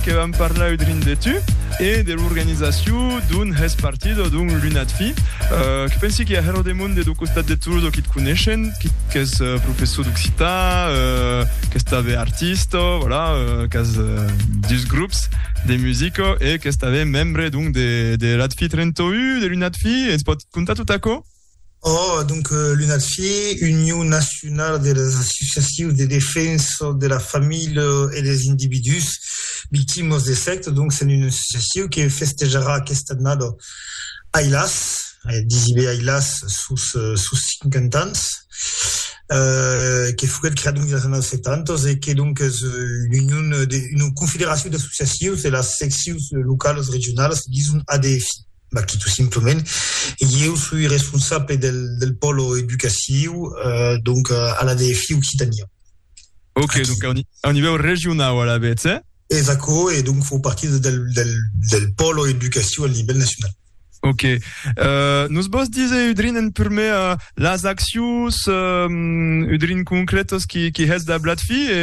que vam parlar eu drin de tu e de l'organizacion d'un hèst partido d'un lunat fi que pensi que a hèr lo demond de do costat de Toulouse o qu'i t coneishen qu'i qu'es professor d'occitan qu'es tanben artista voilà qu'as dus grops de musica e qu'es tanben membre donc de de l'ATFI 31 de l'unat fi e ens pòt contar tot aquò? Oh, donc l'UNADFI, Union Nacional de les Associacions de Defensa de la Familha e des Individús Victimas de Sècta, donc s'en una associacion que festejarà aquesta annada, ailàs, disi be ailàs, sos sos 50 ans, que foguèt creada dins las annadas 70 e que donc es l'union, una confederacion d'associacions de las seccions localas regionalas, dison ADFI. Mas que tot simplement ieu soi responsable del pòlo educaciu, donc a l'ADFI Occitània. Ok, donc a un nivèu regionau alavetz, eh? Es aquò, e donc fau partir del pòlo educaciu al nivèl nacional. Ok. Nos vòs díser udrin en prumèr las accions udrin concrètas que hètz dab l'ADFI e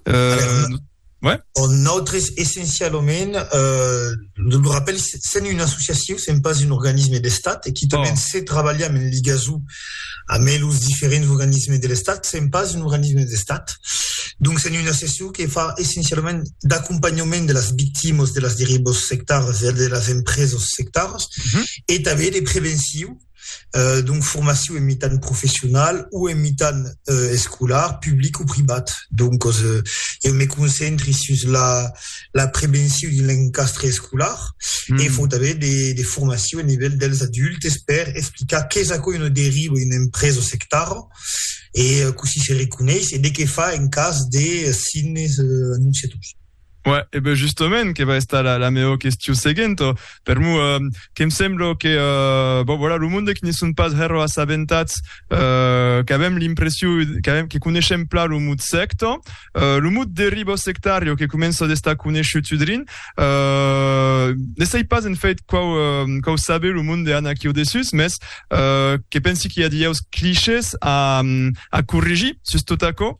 nos. Ouais. Oh, nosaltres, essencialament, euh, de lo rappel, sent un associatiu, sent pas un organisme d'estat, e quitament oh. se trabalham en ligazou amb los diferents organismes de l'estat, sent pas un organisme d'estat. Donc, sent un associatiu que fa essencialament d'acompanhament de las victimas de las derivas sectaras e de las empresas sectaras, mm -hmm. e també de preventiu, donc formacion en mitan professional o en mitan escolar, public o privat. Donc eu me concentri sus la prevencion dins l'encastre escolar e fau tanben de formacion a nivèl dels adultes per explicar qu'es aquò una deriva, una empresa sectara e cossí se reconeis e de qué far en cas de signes anonciators. Ouais, e ben justament, que va estar la, la meva question seguent. Per mu, eh, que em sembla que, eh, bon, voilà, lo monde que ne son pas hero assabentats, eh, qu'avem l'impression, qu'avem, que coneixem pla lo mot secta, eh, lo mot derivo sectario que comença d'estar coneixut udrin, eh, ne sei pas en fait quau, eh, quau sabe lo monde an aquí au dessus, mes, eh, que pensi que hi a dieus clichés a, a corrigir sus tot aquò,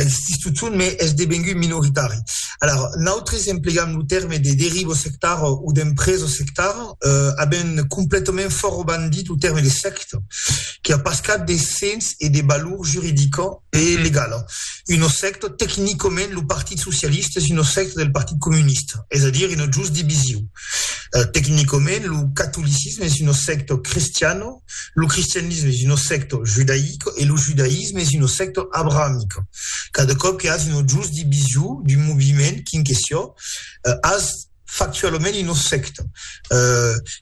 Existís totun, mès es devengut minoritari. Alara, nautres emplegam lo tèrme de derivo sectar o d'empresa sectar, avent completament fòra bandit lo tèrme de sècta, que a pas cap de sens e de valor juridica e legala. Una sècta, tecnicament, lo Partit Socialista es una sècta del Partit Comunista, es a dire una just divisiu. Tecnicament, lo catolicisme es una sècta cristiana. Lo cristianisme es una secta judaica e lo judaïsme es una secta abrahamica. Cada còp que has una just division d'un moviment quin que siá, has factualament una secta.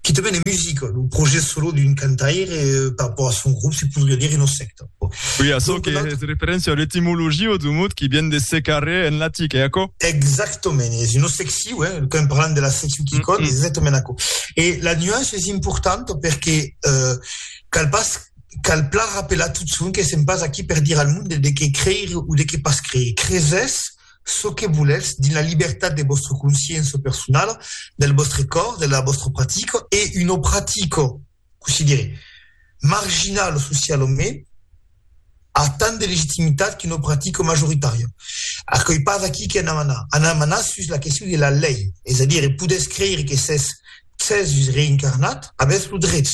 Quitament en musica, lo projèct solo d'un cantaire per rappòrt a son grop se podriá dire una secta. Oui, açò Donc, que notre... es referència a l'etimologia du mot qui vient de secarrer en latic, eh, aquò? Exactament, es una secciu, eh, quand parlant de la secciu qui mm -hmm. es exactament aquò. E la nuance es importanta perque eh, cal pas cal plan rappelar tot son que sem pas aquí per dir al mond de, de que creir ou de que pas creir. Creses ce que volètz dins la libertat de vostra consciença personala, del vostre còr, de la vostra pratica e una pratica considere marginal o social o mèn, a tant de legitimitat que no practica majoritària. Aquoi pas aquí que anam anar. Anam anar sus la question de la lei, es a dire, podètz creire que s'es Cèsus reincarnat, avètz lo drech.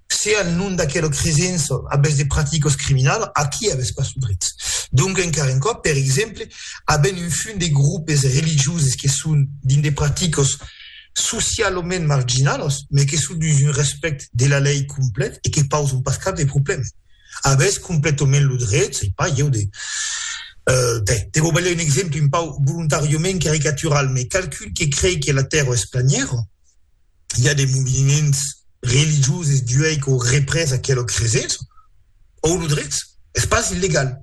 Se al nom d'aquela cresença avètz de practicas criminalas, aquí avètz pas lo drech. Donc, encara un còp, per exemple, avèm un fum de groupes religioses que son dins de practicas, socialament marginalos, mai que son dus un respèct de la lei complet e que pauson pas cap de problème. Avètz completament lo dret, sei pas ieu, de, ben, de vos balhar un exemple un pauc volontàriament caricatural, mai qualqu'un que crei que la tèrra es planièra, i a de moviments religioses d'uèi qu'au représ aquela cresença, au lo dret, es pas illegal.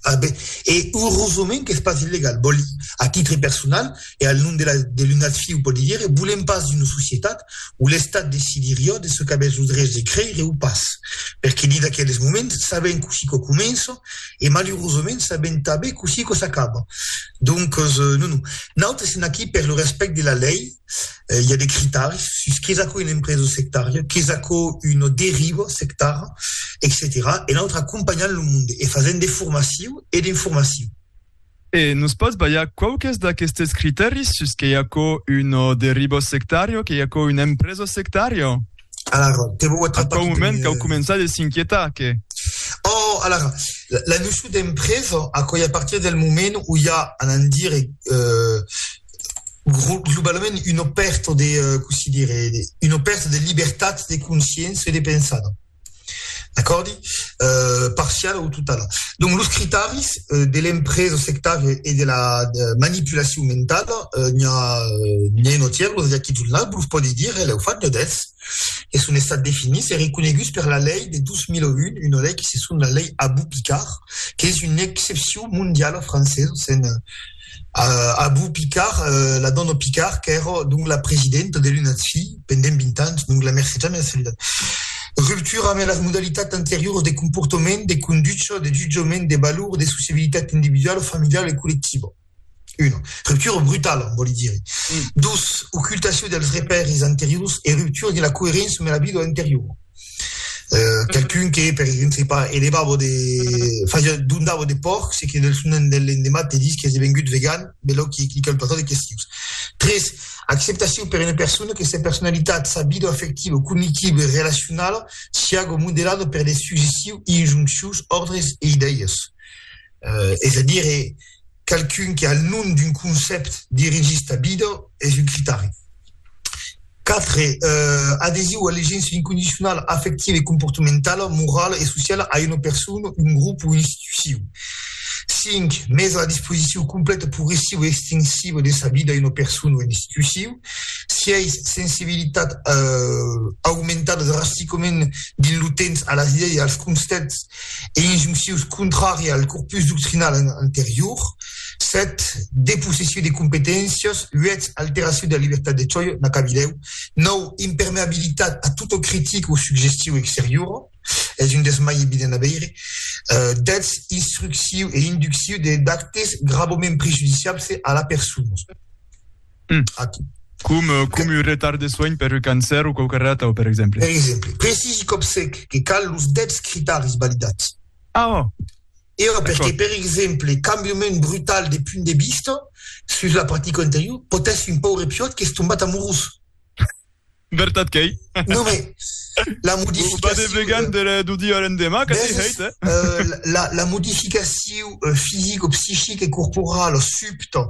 A ben, e urosament qu'es pas illegal, vòl dir, a titre personal e al nom de la de l'un ath fiu pòdi dire, volem pas d'una societat où l'Estat decidirió de çò qu'avètz lo drech de creire o pas, perque dins aqueles moments sabem cossí quò comença e malurosament sabem tanben cossí quò s'acaba. Donques, non, non. Nautes sèm aquí per lo respèct de la lei, eh, i a de critaris sus qu'es aquò una empresa sectària, qu'es aquò una deriva sectara, etcetèra E nautre acompanhant lo monde e fasent de formaciu e d'informaciu. E nos pòts balhar quauques d'aquestes critaris sus qu'ei aquò una deriva sectària, qu'ei aquò una empresa sectària? Alara, te vau atrapar... Aquò moment qu'au començar de s'inquietar, que... Oh, alara, la, la noció d'empresa, aquò a partir del moment où i a, anant dire, eh, globalament una pèrta de, cossí dire, una pèrta de libertat de consciéncia e de pensada, d'acòrdi? Parciala o totala. Donc, los critaris de l'empresa sectària e de la manipulacion mentala n'i a un atièr, los Jackie Zulnaz, vos los pòdi dire, lèu fach de dètz, que son estats definits e reconeguts per la lei de 2001, una lei que se son la lei Abou-Picard, qu'es una excepcion mondiala francesa, s'en Abu Picard, la dòna Picard qu'èra donc la presidenta de l'UNADSI pendent 20 ans, donc la mercetja mea solidat. Ruptura ambe las modalitats anterioras de comportament, de conducha, de jutjament, de valor, de sociabilitat individuala, familiala e collectiva. Una ruptura brutala, vòli dire. Dos, ocultacion dels repèris anteriors e ruptura de la coeréncia ambe la vida anteriora. Euh, qualqu'un que, per exemple, se pas, elevava de... Fasia, dondava de porcs e que del son de l'endemat te dis que és devengut vegan, belò que clica el patat e que sius. 3. Acceptacion per una persona que sa personalitat, sa vida afectiva, cognitiva e relacionala siaga modelada per de successius injonccions, òrdres e idèias. es a dire, qualqu'un que al nom d'un concèpt dirigís ta vida, es un critari. Quatre, adhesiu a l'egença incondicionala afectiva e comportamentala, morala e sociala a una persona, un grop o una institucion. Cinc, mesa a la disposicion completa, progressiva e extensiva de sa vida a una persona o una institucion. Sièis, sensibilitat aumentada drasticament dins lo temps a las idèis e als concèpts e injunccions contrària al corpus doctrinal anterior, 7 depossession de competéncias, 8 alteracion de la libertat de choix, n'a qu'abi 10, 9 impermeabilitat a tota critica o suggestion exteriora, es un dels mai evidents a veire, 10 instruccion e induccion d'actes gravament prejudiciables a la persona. Mm. Aquí. Com, eh, com un retard de soin per un cancer o quauque rata, per exemple. Per exemple, precisi cop sec que cal los debs critaris validats. Ah, oh. E oh, perque, per exemple, cambiament brutal de punt de vista sus la practica anterior, potèssi un paure piot qu'es tombat amorós. Vertat qu'ei. Non, mais la modificacion... Pas de vegan d'un dia a l'endemà, que t'ei hèit, eh? La modificacion fisica o psichica e corporala subta,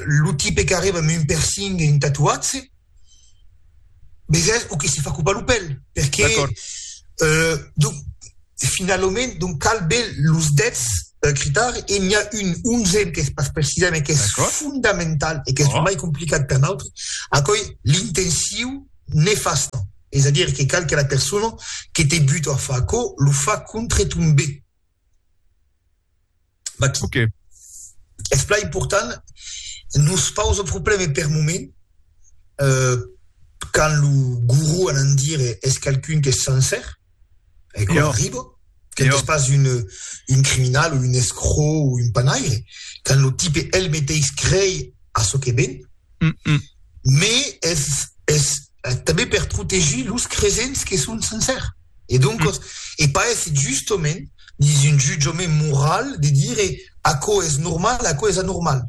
lo tipe qu'arriba amb un piercing e un tatuatge, vesètz, o que se fa copar lo pèl, perqué, donc, E finalament, donc cal be los dètz critaris, e n'i a un onzèm qu'es pas precisat me qu'es fondamental e qu'es lo mai complicat per nautre, aquò ei l'intencion nefasta, es a dire que cal que la persona que te buta a far aquò lo fa contre ton be. Maquis. Ok. Es plan important, nos pausa probleme per moment, quand lo guru a n'en dire es qualqu'un qu'es sencer, e quò arriba, quand es pas un un criminal o un escrò o un panaire, quand lo tipe el meteis crei a çò que ben, mais es tanben per protegir los cresents que son sincèrs. E doncas, e paèsse justament dins un jutjament moral de dire aquò es normal, aquò es anormal.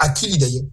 Aquí li daiem.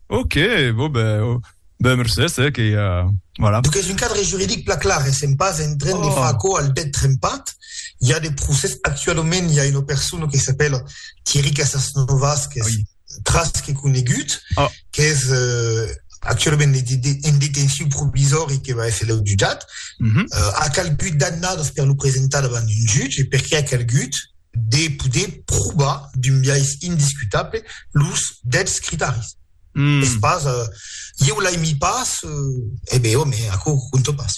Ok, bon ben, ben mercés, eh, que ja, voilà. Donc es un cadre juridic plan clar, essèm pas en train de far aquò al dèt trempat. I a de procès, actualament i a una persona que s'apèla Thierry Casasnovas qu'es... tras que conegut, oh. qu'es eh, actualament en detenció provisòri que va èsser jutjat, mm -hmm. eh, a calgut d'annadas per lo presentar davant un jutge, perquè a calgut de poder provar d'un biais indiscutable los dets critaris. Mm. Es pas, eh, eu l'ai mi pas, eh, e eh ben, home, aquò conto pas.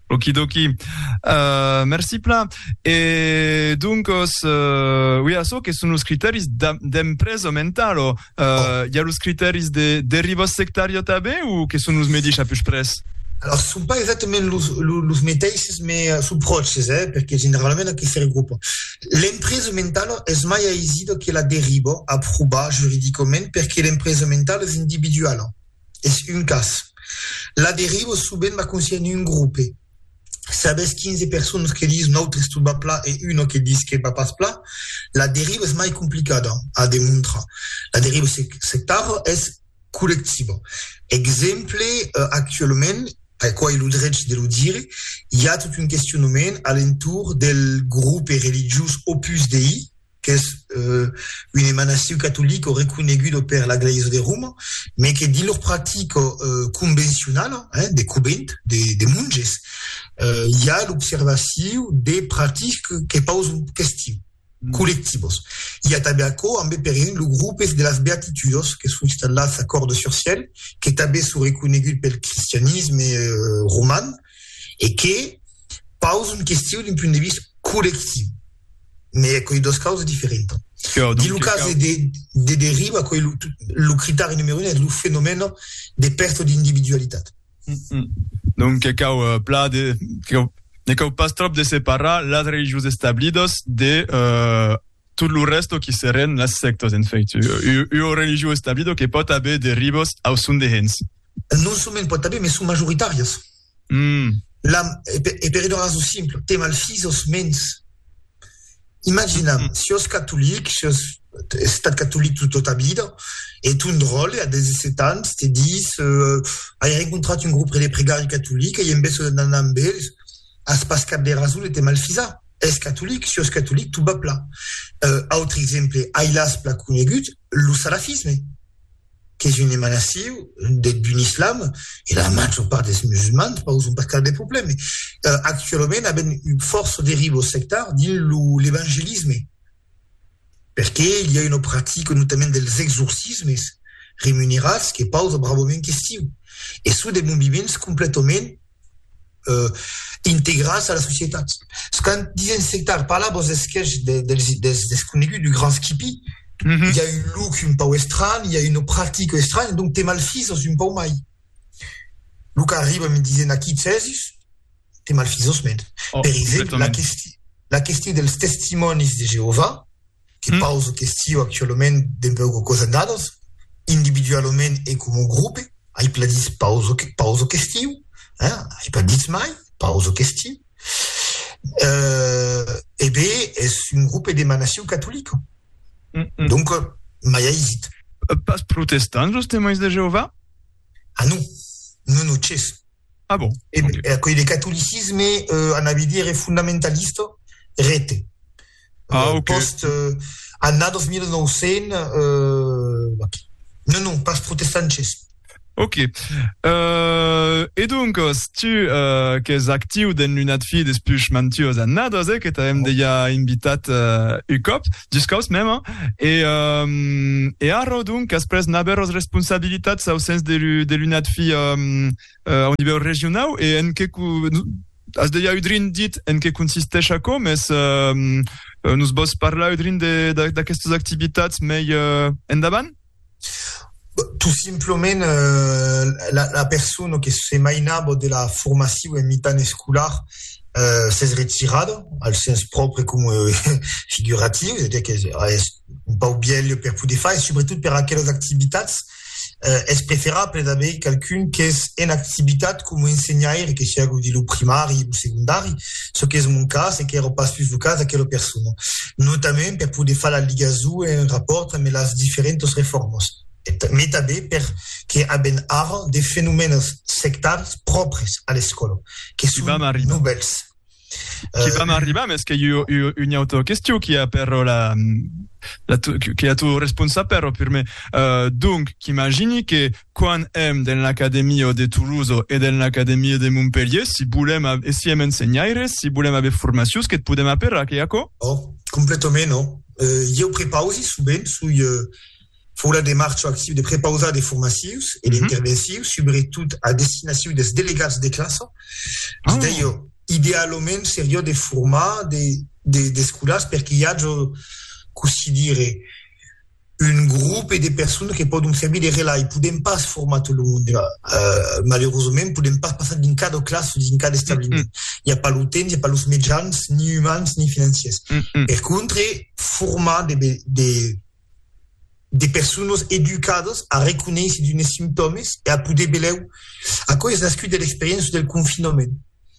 Okidoki. Euh, merci plan. E doncos, euh, oui, açò que son los criteris d'empresa mentalo, euh, oh. i a los criteris de deriva sectària tabé o que son los medis a pus pres? Alors, sont pas exactement los, los, los meteisses, mais euh, sont proches, eh, perquè generalment aquí se regroupa. L'empresa mentala es mai aisida que la deriva a provar juridicament perquè l'empresa mentala es individuala. Es un cas. La derivo subent m'a consièn un grope. Sabes 15 personas que dis nautres tot va pla e una que dis que va pas pla? La deriva es mai complicada a demontrar. La deriva sectara es collectiva. Exemple, actualament, aquò ai lo drech de lo dire, i a tot un questionament a l'entorn del grope religiós Opus Dei, qu'es un emanasiu catolic o reconegudo per la Glèisa de Roma, me que dins lor practica convencionala, de covent, de monges, i a l'observaciu de practicas que pausan questiu, collectivos. I a tanben aquò ambe per exemple lo grupes de las Beatitudos que son installats a Cordes-sur-Ciel, que tanben son reconegut pel cristianisme roman e que pausan questiu d'un punt de vista collectiu. mais aquoi dos causes diferentas. Dins lo cas de deriva, aquoi lo critèri numero un es lo fenomèn de pèrta d'individualitat. Donc que cau plan de, ne cau pas tròp de separar las religions establidas de tot lo rèsto qui serien las sèctas, en fait. Ua religion establida que pòt aver derivas au son de hens. Non soment pòt aver, mais son majoritàrias. L'am, e per una rason simpla, te malfis os mens. Imaginam, si os catolic, si os estat catolic tota ta vida, e ton dròlle a 17 ans te dis, ai rencontrat un grupre de pregari catolic e i en besonh d'anar amb ells, as pas cap de rason de te malfisar. Es catolic, si os catolic, tu bap la. Autre exemple, ai las pla conegut, lo salafisme. qu'es un emanaciu d'un islam, e la major part des musulmans pauson pas cap de problème, actualament avèm un fòrça derivos sectars dins lo l'evangelisme, perque i a una practica notament dels exorcismes remunerats que pausa bravament questiu, e son de moviments completament integras a la societat. Quand disen sectar, parla vos esquèch dels desconeguts, du grand skippy, i a un look un pau estranh, i a una practica estranh, donc te malfisos un pau mai. Lo qu'arriba me disen aquí Cèsus, te malfisos mens. Per exemple, la question dels Testimònis de Jeovà, que pauso questió actualament dempeu que cosa nanos, individualament e coma grope, ai pas ditz pauso, pauso questió, hein, ai pas ditz mai, pauso questió, euh, e be es un grope d'emanacion catolica, donc mai aisit. Pas protestant, Los Temòins de Jeová? Ah non, non, non, ches, Ah bon? E okay. Eh, aquei de catolicisme, eh, anava a dire fundamentalista, rete. Ah, eh, okay. Post, eh, annados 1900, eh, aquí. Non, non, pas protestances. Ok. Euh, et donc, euh, si tu euh, que es actiu dans l'unat fi des plus mantuos annados, eh, que t'avem oh. déjà invitat euh, un cop, Juscaus mèma, e, um, e arro, donc, asprès n'aver os responsabilitats au sens de, de l'UNADFI um, uh, au nivèu regionau, e en que... As deia udrin dit en que consisteix aquò, mes um, nos vos parlar udrin d'aquestas activitats mei uh, endavant? Tot simplement la persona que se mainava de la formacion en mitan escolar s'es retirada, al sens pròpre coma figuratiu, es a dire qu'es un pauc vielha per poder far, e subretot per aquelas activitats es preferable d'aver qualqu'un qu'es en activitat coma ensenhaire, que siá lo primari o lo segondari. çò qu'es mon cas e qu'èra pas sus lo cas d'aquela persona, notament per poder far la ligason e un rapòrt amb las diferentas reformas, mai tanben per que avèm ara de fenomènes sectaris pròpris a l'escòla, que son novèls. Qu'i vam arribar, mes que jo, jo, una autra question qui a però la, la qui a tu responsar però per me. Uh, donc, qu'imagini que Quan èm dens l'Academia de Toulouse e dens l'Academia de Montpelhier, si bolèm e si èm ensenhaires, si bolèm aver formacions, que't podèm aperar, qu'ei aquò? Oh, completament, oh. Ieu prepausi sovent, soi fòra de marcha actiu de prepausar de formacions e d'intervencius, subretot a destinacion des delegats de classa. Vis de jo, idealament seriá de formar de, de, d'escolars perque i aja cossí dire. un grope de personas que pòdon servir de relai. Podèm pas formar tot lo monde, malerosament, podèm pas passar dins cada classa o dins cada establiment. I a pas lo temps, i a pas los mejans, ni umans, ni financiers. Per contre, formar de personas educadas a reconéisser d'unes simptòmes e a poder velèu, aquò es nascut de l'experiéncia del confinament.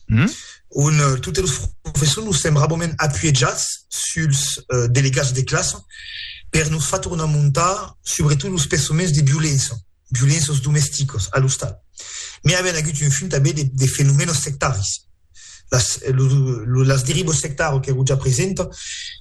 Mm? on euh, totes los professors nos sembrabament apuejats suls euh, delegats de classe per nos fa tornar montar sobretot los pessaments de violença, violenças domesticas a l'ostal. Mais avèn agut un fum també de, de fenomènes sectaris. Las, lo, lo, las derivas sectaras qu'èro ja presenta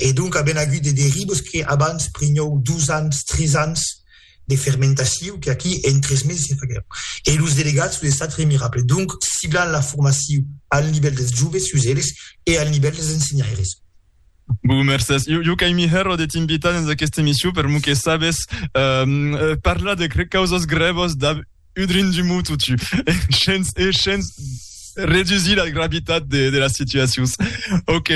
E donc a ben agut de derivos que abans prinhou dos ans, tres ans de fermentaciu que aquí en tres meses se faguèron. E los delegats los estat remirable. Donc ciblan la formaciu al nivèl dels joves sus eles e al nivèl dels ensenhaires. Bon, mercés. Jo, jo qu'ai mihèro de t'invitar dens aquesta emission per mou que sabes parlar de causas grèvas dab Udrin du mot totu. E shens, e shens redusir la gravitat de, de las situacions. Ok.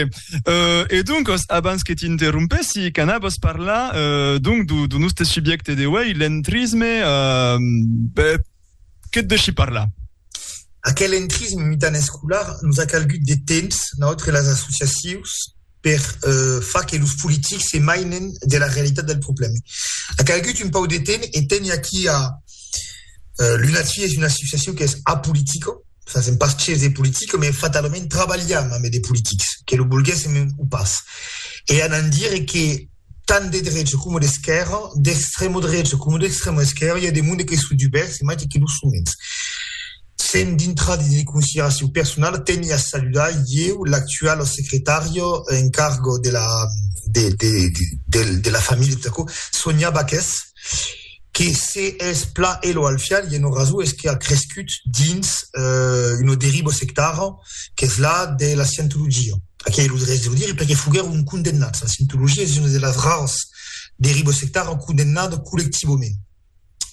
Euh, e donc, abans que t'interrompessi, canabos parlar euh, donc du, du nostre subjecte de wei, l'entrisme, euh, be, que te deixi parlar? Aquel entrisme mitan escolar nos a calgut de temps, notre las associacions, per far que los politics se mainen de la realitat del problème. A calgut un pau de temps e teni aquí a Lunatfi es una associacion qu'es apolitica, fasèm pas ches de politica, mai fatalament trabalham ambe de politics, que lo volguèssem o pas. E anant dire que tant de drecha coma d'esquèrra, d'extrèma drecha coma d'extrèma esquèrra, i a de monde que son dubèrts e maites que lo son mens. Sen dintrar dins de consideracions personalas, teni a saludar ieu l'actuala secretària en carga de la familha de Tacó, Sonia Baques, que se es pla e lo alfial i eno raso es que a crescut dins una deriva sectara qu'es la de la scientologia aquei lo drech de lo dire perque foguèron condemnats la scientologia es una de las raras derivas sectara condemnada collectivament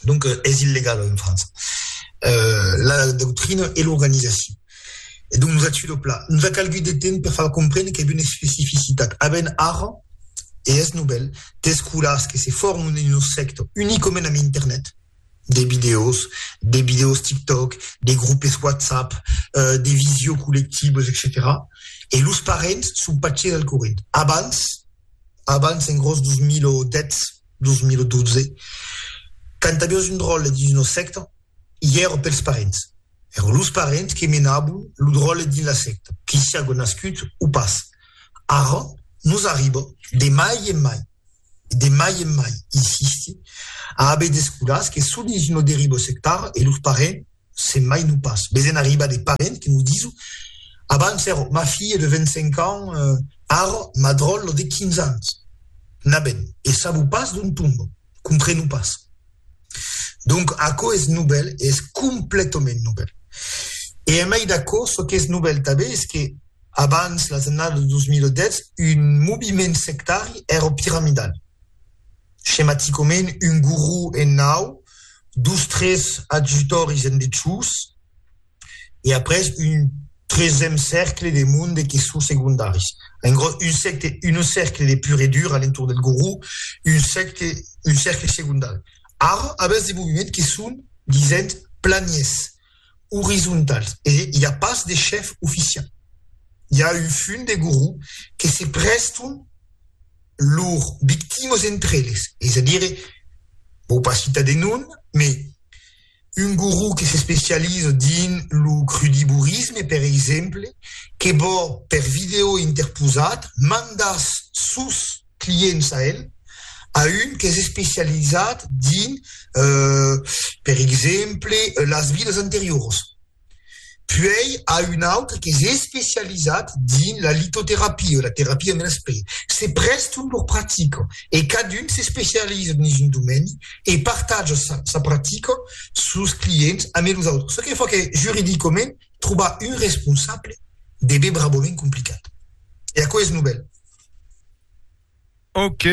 donc es illegala en França la doctrina e l'organizacion E donc nos a tuit lo pla. Nos a calgut de temps per far comprene qu'èvi una especificitat avent ara, e es novèl, d'escolars que se formen dins lo sector unicament amb internet, de vidèos, de vidèos TikTok, de grupes WhatsApp, de visio collectives, etcetèra. E los parents son pas ges al corrent. Abans, abans en gròs 2010, 2012, quand aviás un dròlle dins lo sector, i èra pels parents. Èron los parents que menabon lo dròlle dins la secta, qu'i siágo nascut o pas. Ara nos arriba de mai en mai, de mai en mai, insisti, a aver d'escolas que son dins una deriva sectara e los parents se'n mainon pas. Ves en arribar de parents que nos dison, abans èra ma filha de 25 ans, ara ma dròlla de 15 ans. Naben, e sabo pas d'ont tomba. Comprenu pas. Donc, aquò es novèl e es completament novèl. E a mai d'aquò, çò qu'es novèl tanben es que, abans las annadas de 2010, un moviment sectari èra piramidal. Schematicament, un guru en naut, dos, tres adjutòris en dechús, e après un tresèm cercle de monde que son segondaris. En gros, un secte, un cercle de pur e dur alentour del goró, un secte, un cercle segondari. Ara, avètz de moviments que son, disent, planiers, orizontals, e i a pas de chèf oficial. I a un fum de goró que se prèston lors victimes entre eles, es a dire, vò pas citar de nom, mais, Un guru que s'especializa dins lo crudivorisme, per exemple, que vò, per vidèo interposat, mandar sos clients a el, a un qu'es especializat dins, per exemple, las vidas anterioras. Puèi a un autre qu'es especializat dins la litoterapia o la terapia de l'esperit. Se prèston lor practica e cadun s'especializa dins un domeni e partatja sa sa practica sos clients ambe los autres, çò que fa que juridicament trobar un responsable debe brabament complicat. E aquò es novèl. Ok.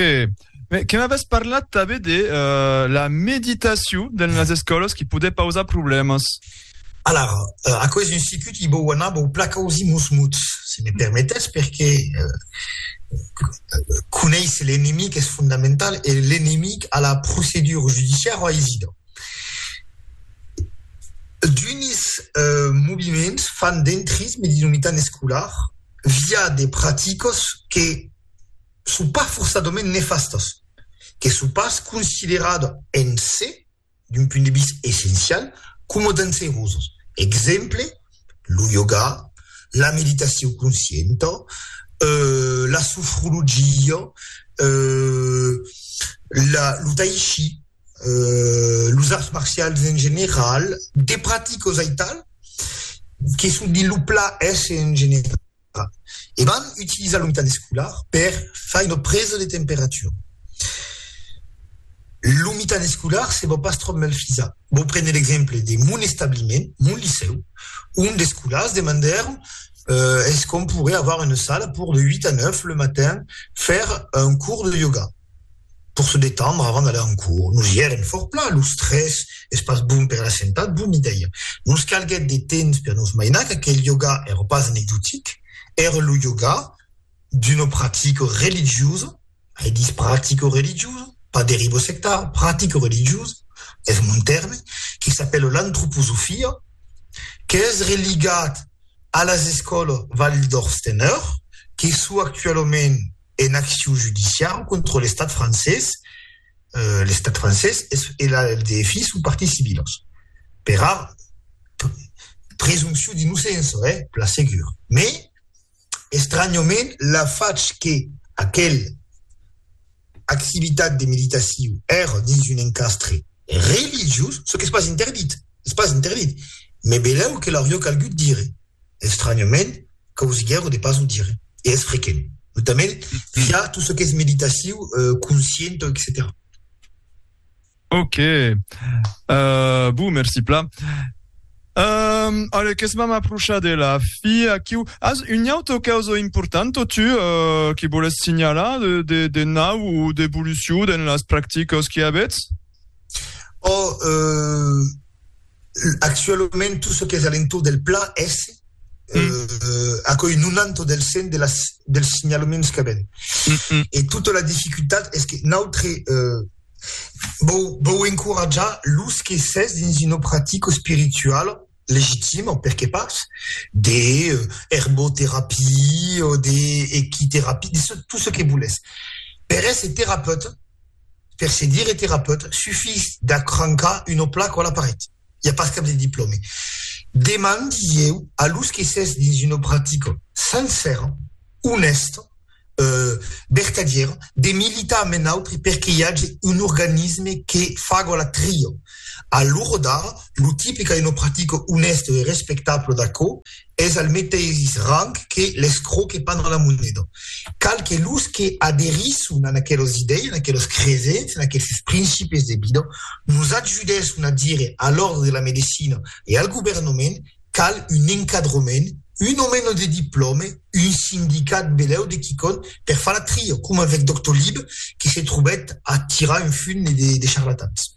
Mais que m'avès parlat també de euh, la meditacion dans les escòlas qui podè pausar problèmas. Alara, euh, aquò es un sicut qui vòu anar vòu placar ausi mos mots, si me permetètz, perque euh, conéisser l'enemic es fondamental e l'enemic a la procedura judiciara aisida. D'unis euh, moviments fan d'entrisme dins lo mitan escolar via de praticas que son pas forçadament nefastas, que son pas consideradas en se d'un punt de vista essencial coma danserosas. Exemple, lo yoga, la meditacion conscienta, la sofrologia, lo tai chi, los arts marcials en general, de practicas aital que son dins lo plan èsser en general. e van utilizar lo mitan escolar per far una presa de temperatura. Lo mitan escolar se vò pas tròp mal fisat. Vò prene l'exemple de mon establiment, mon licèu, ont d'escolars demandèron es qu'on pourrait avoir une salle pour de 8 a 9 le matin faire un cours de yoga. Pòr se detendre avant d'aller en cours. Nos i èrem fòrt plan, los tres, es pas bon per la sentat, bon idèia. Nos calguèt de temps per nos mainar qu'aquel yoga èra pas anecdotic, èra lo yoga d'una practica religiosa, ai dich practica religiosa, pas deriva sectara, practica religiosa, es mon tèrme, que s'apèla l'antroposofia, qu'es religat a las escòlas Waldorf-Steiner, que sò actualament ena accion judiciau contra l'Estat francés, l'Estat francés e la LDF son parties civilas, pera presumpcion d'inocença, eh, per la segur. Mès, estranhament, la fach que aquela activitat de meditacion èra dins un encastre religiós, çò qu'es pas interdit, es pas interdit, me belèu que l'aurió calgut dire. Estranyament, causiguèron de pas o dire, e es frequent, notament via tot çò qu'es meditaciu, conscienta, etcetèra. Ok. Euh, bon, merci plan. Euh, allez, qu'es m'am aprochar de la fi aquiu. As un autre causa importanta, tu, euh, que voles signalar de, de, de nau ou d'evolucion dans las practicas que avètz? Oh, euh, Actualament, tot çò qu'es a l'entorn del pla es aquoi 90 del 100 de las, dels signalaments qu'avèm. E tota la dificultat es que nautre vau, vau encoratjar los que s'es dins una practica espirituala legitima, perqué pas, de erboterapia, de equiterapia, tot çò que volètz. Per èsser terapeuta, per se dire terapeut, sufís d'acrancar una placa a la paret. I a pas cap de diplòme. Deman dilhèu a los que s'es dins una practica sencèra, onèsta, vertadièra, de militar amb un autre per que i age un organisme que faga la tria. A l'ora d'ara, lo tipe qu'a una practica onèsta e respectabla d'aquò, es al meteis rang que l'escrò que pan a la moneda. Cal que los que aderisson a aquelas idèias, a aquelas cresenças, a aqueles principis de vida, nos ajudèsson a dire a l'Òrdre de la Medecina e al governament cal un encadrament, un o meno de diplòme, un sindicat belèu de quicòm per far la tria, coma avèc Doctor Lib que se trobèt a tirar un fum de charlatans.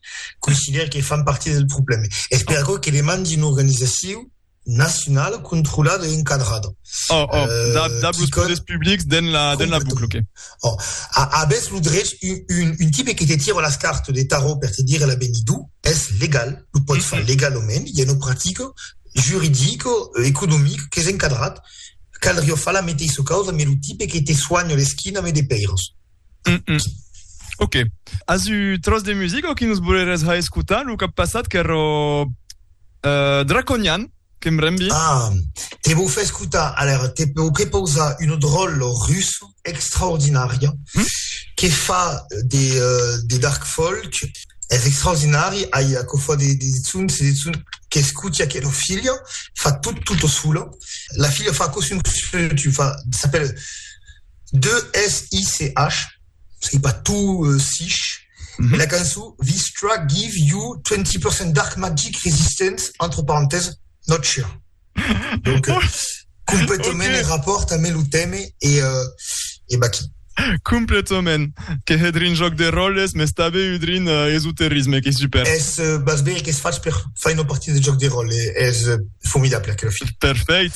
considère que fan partir del problème. Es per aquò que demandi una organizacion nacionala controlada e encadrada. Oh, oh, euh, dab, dab los poders publics den la, den la bucla, ok. Oh, abès lo drech, un, un, un tipe que te tira las cartes de tarot per te dire la benidou, es legal, lo pot mm -hmm. far legalament, hi ha una practica juridica, euh, economica, que és encadrat, caldria far la meteissa causa, me lo tipe que te soigna l'esquina me de peiros. Mm -mm. Ok. As u tros de musica o que nos boleres ha escutar lo cap passat qu'ero uh, Draconian, que em rembi? Ah, te vou fer escutar, alors te vou prepausar un drol russe extraordinaria mm? que fa de, uh, de dark folk, es extraordinari, ai a cofa de, de zun, se de zun que escuti aquella figlia, fa tot, tutto solo, la figlia fa così un tu fa, s'appelle 2SICH, sei pas tu sich, mm -hmm. la cançó Vistra give you 20% dark magic resistance, entre parenthèses, not sure. Donc, euh, complètement okay. rapport à le thème et, euh, et bah qui. Completament. Que he drin joc de roles, mais també eu drin uh, eh, esoterisme, que super. Es uh, bas bé que es fas per fer una partida de joc de rol, eh, es uh, formidable aquel film. Perfect.